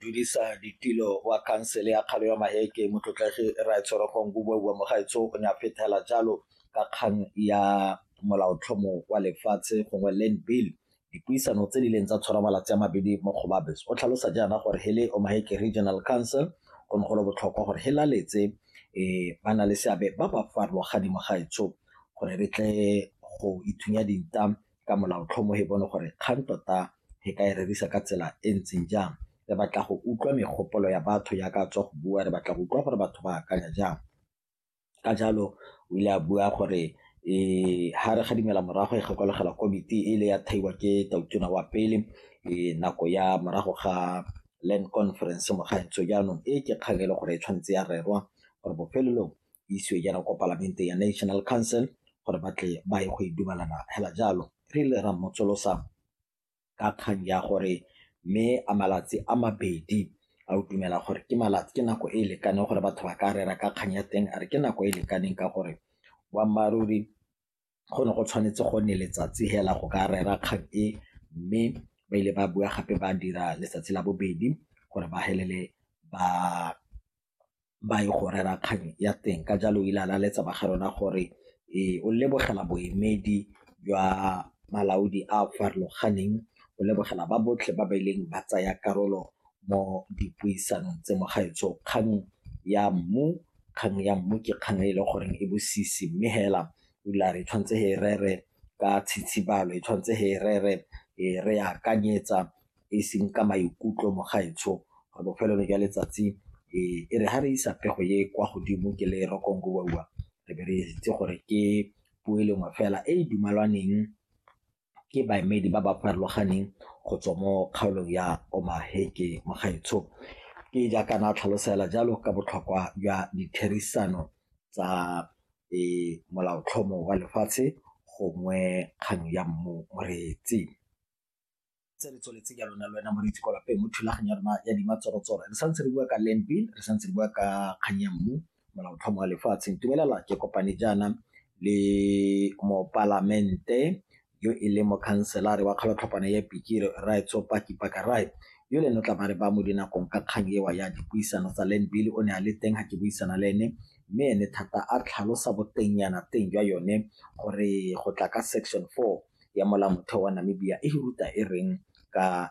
dulisa ditilo wa khansele ya kgalo ya maheke motlotlegi raetshorego ngubobua mogaetso o ne a fethela jalo ka kgang ya molaotlhomo wa lefatshe gongwe land bill dipuisano tse di leng tsa tshwara malatsi a mabedi mo kgobabes o tlhalosa jaana gore hele o maheke regional council go ne golo botlhokwa gore he laletse um ba na le seabe ba ba farologaneng mogaetsho gore re tle go ithunya dinta ka molaotlhomo e bone gore kgang tota e ka e rerisa ka tsela e ntseng jang re batla go utlwa megopolo ya batho ya ka tswa go bua re batla go utlwa gore batho ba akanya jang ka jalo o ile a bua gore e ha re ga dimela morago e gakologelwa komiti e ile ya thaiwa ke tautona wa pele e nako ya morago ga land conference mo gaetso jaanong e ke kgang e le gore e tshwanetse ya rerwa gore bofelelong isiwe jaana kwa palamente ya national council gore ba tle ba ye go e dumalana hela jalo re ile ra motsolosa ka kgang ya gore mme a malatsi a mabedi a o dumela gore ke malatsi ke nako e e lekaneng gore batho ba ka rera ka kgang ya teng a re ke nako e e lekaneng ka gore boammaaruri go ne go tshwanetse go nne letsatsi hela go ka rera kgang e mme ba ile ba bua gape ba dira letsatsi la bobedi gore ba helele ba ba ye go rera kgang ya teng. Ka jalo o ile a laletsa ba ga rona gore o lebogela boemedi jwa balaodi a a farologaneng, o lebogela ba botlhe ba ba ileng ba tsaya karolo mo dipuisanong tse. Mogaetsho kgang ya mmu, kgang ya mmu ke kgang e leng gore e bosisi mme fela o ile a re e tshwanetse re e rere ka tshitsibalo, e tshwanetse re e rere re e akanyetsa. e seng ka maikutlo mogaetsho re bofelelo jwa letsatsi e re ga re isa pego ye kwa godimo ke le rokongowa re be re itse gore ke puo e lengwe fela e e dumalwaneng ke baemedi ba ba farologaneng go tswa mo kgaolong ya omaheke mogaetsho ke jaaka na tlhalosela jalo ka botlhokwa jwa ditherisano tsa molaotlhomo wa lefatshe gongwe kgang ya mmu moreetsi tse re tsweletse jalo na le wena moreetsi kwa lapeng mo thulaganyo ya rona ya dima tsorotsoro re santse re bua ka land bill re santse re bua ka kgang ya mmu molaotlhomo wa lefatshe ntumelela ke kopane jaana le mopalamente yo e leng mokhanselare wa kgalotlhopana ya pikire rae tsopaki pakarae yo le no tla ba re ba mo dinakong ka kgang ewa ya dipuisano tsa land bill o ne a le teng ga ke buisana le ene mme ene thata a tlhalosa botengyana teng jwa yone gore go tla ka section four ya molaotheo wa Namibia e ruta e reng ka.